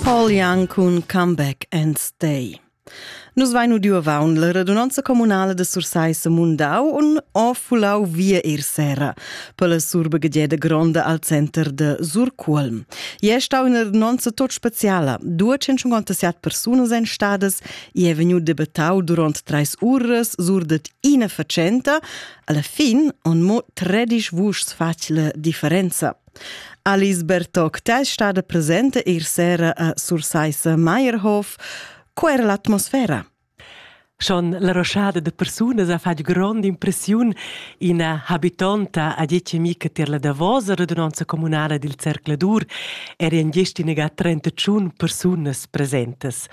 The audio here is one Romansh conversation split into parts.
Paul Young cun Comeback and Stay. Nus vain udiu avaun la radunanza comunala de Sursaissa Mundau un ho fulau via ir sera per la surbegieda gronda al center de Surcuolm. E è stau una radunanza tot speciala. 257 persunas ein stadas e è vegnu debattau durant treis uras sur det ina facenta. Alla fin on mo 13 vuschs facile differenza. Alice Bertocta è stada presenta ier sera a Sursaissa Meyerhof. Co era l'atmosfera? Schon la roschada de persunas ha fatg grond impressiun. Ina habitonta ha detg a mi che tier la davosa radunanza communala dil Cercladur eri en gest in negat 31 persunas presentes.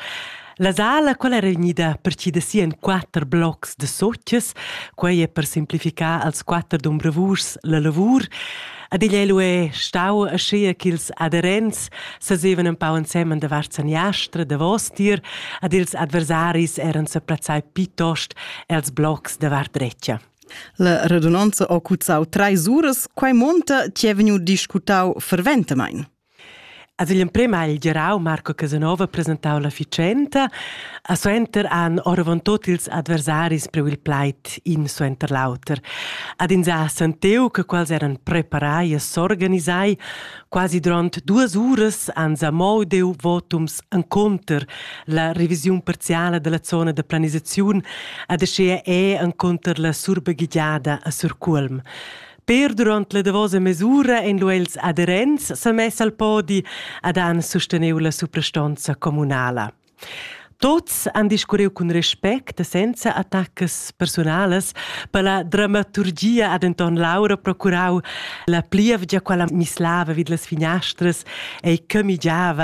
La sala, quella era unida partida si en quatter blocs de sotches, quei è per simplificar als quatter dombravurs la lavur. Ad igl lu è stau aschia ch'ils adherents sasevan un pau ensemen davart saniastra, davostier, ad ils adversaris eran seplazzai piuttost els blocs davart retgia. La radunanza ha cuzzau treis uras, quei monta chi è vegniu discutau ferventamein. A vegl emprem ha il gerau Marco Casanova presentau la fitschenta. A suenter han oravontut ils adversaris priu il plaid in suenter l'auter. Ad ins ha sentiu che quels eran preparai e s'organisai. Quasi duront duas uras han zamau deu votums encunter la revisiun parziala della zona da planisaziun ad aschia è encunter la surbaghigiada a Surcuolm. Per durant la davosa mesura ein lu els adherents semess al podi ed han susteneu la suprastonza communala. Tots han discurriu cun respect e senza attacas personalas per la dramaturgia ad Anton Laura procurau la plievgia quella mislava vid las finastras e camigiava